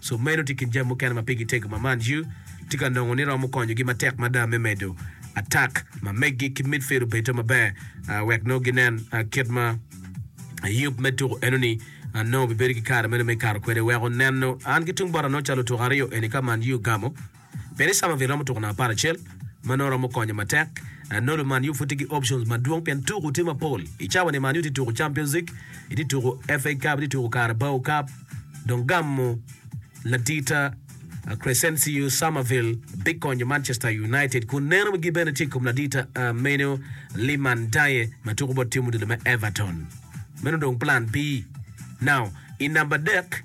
Sub meno tye kin jami mukene ma pigi tego ma Man U tye ka nongo ni romo konyogi matek mada me medo atak ma meggi ki midfield obedo maber wek nongo ginen kit ma yub me tuko enoni nongo bibedo ki kare meno me kato kwede. Weko neno an ki tung bota nongo calo otuko aryo eni ka Man U gamo. Peri Somerville romo tuko namba apar acel ma nongo romo konye matek. Nolu Man U pud tye ki options madwong pien tuko tye mapol. I cawa ni Man U tye tuko Champions League, itye tuko FA Cup, itye tuko Carabao Cup dong gamo ladita Crescencio Somerville bikonyo Manchester United kun neno gi bene tye i kom ladita Manuel Liman Ndiaye ma tuko bot tim odilo me Everton. Meno dong plan B. Now, i namba adek,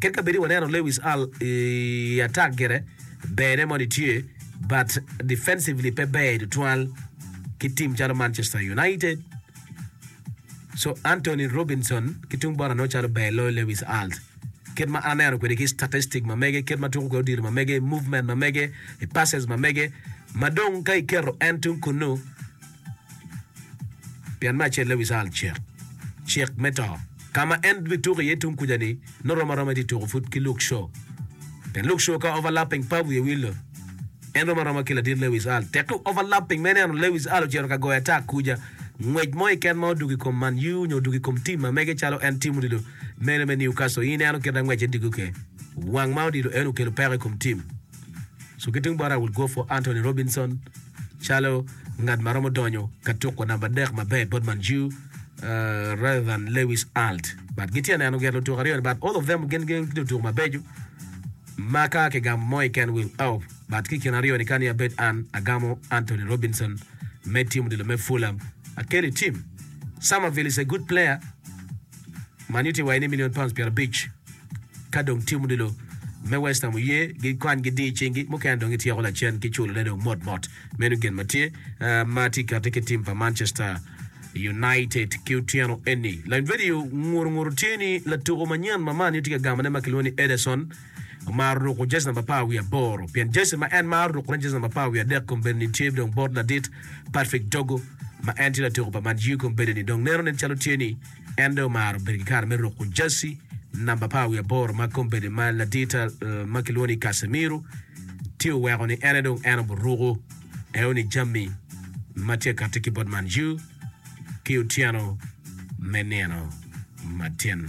Kit ka bedi waneno Lewis Al i atak gire berne moni tye but defensively pe ber tutwal ki team calo Manchester United. So Antonee Robinson ki tung bot anongo calo ber loyo Lewis Alt. Kit ma an aneno kwede ki statistic ma mege, kit ma tuko kwede odiro ma mege, movement ma mege, passes ma mege, ma dong ka iketo en tung kunnu Pien me acelle wi cal cik, cik me to, ka ma en bituko iye tung kuja-ni nongo rom aroma itye tuko pud ki Luke Shaw. Pien Luke Shaw ka overlapping pa wiye wilo, en rom aroma ki ladit Lewis Al. Tekki overlapping me neno Lewis Al ocito ka goyo atak kuja, ngwec mo keken ma odwogo i kom Man U nyo odwogo i kom tim ma mege calo en tim odilo mene me Newcastle, in ineno kit angwece digi oke. Wang ma odilo eno okelo peko i kom tim. Cuki tung bot Raul Guofo, Antonee Robinson, calo ngat ma romo donyo ka tuko namba adek maber bot Manju uh, rather than Lewis Alt. But gitye neno gen lutuko aryo ni but all of them gin gin lutuko mabeco ma ka kigamo mo iken will out. But ki kin aryo ni kani abed an agamo Anthony Robinson me tim odilo me Fulham. Akeli tim. Somerville is a good player. Man Utd waye ni million pounds pyerabic. Ka dong tim odilo me Westham oye, gikwany gidir i cingi, mukene dong gityeko lacen ki culone dong mot mot. Meno gin ma tye ah, ma tye kati ki tim pa Manchester United ki otyeno eni. Lany vedio nguru nguru tye ni latuku manyen ma Man U tye ka gamone ma kilwongo ni Ederson omaro ruku jezi namba apar wiye aboro pien jezi ma en maro rukune jezi namba apar wiye adek kong bene ni tye dong bot ladit Patrick Dogu ma en tye latuku pa Man U kong bene ni dong neno nen calo tye ni En dong omaro bedo ki kare me ruko jaci namba apar wiye aboro ma kombeddi ma ladita ma kilwongo ni Casemiro tye oweko ni en aye dong en oburuko eoni jami ma tye kati ki bot Man U ki otyeno me nino matin.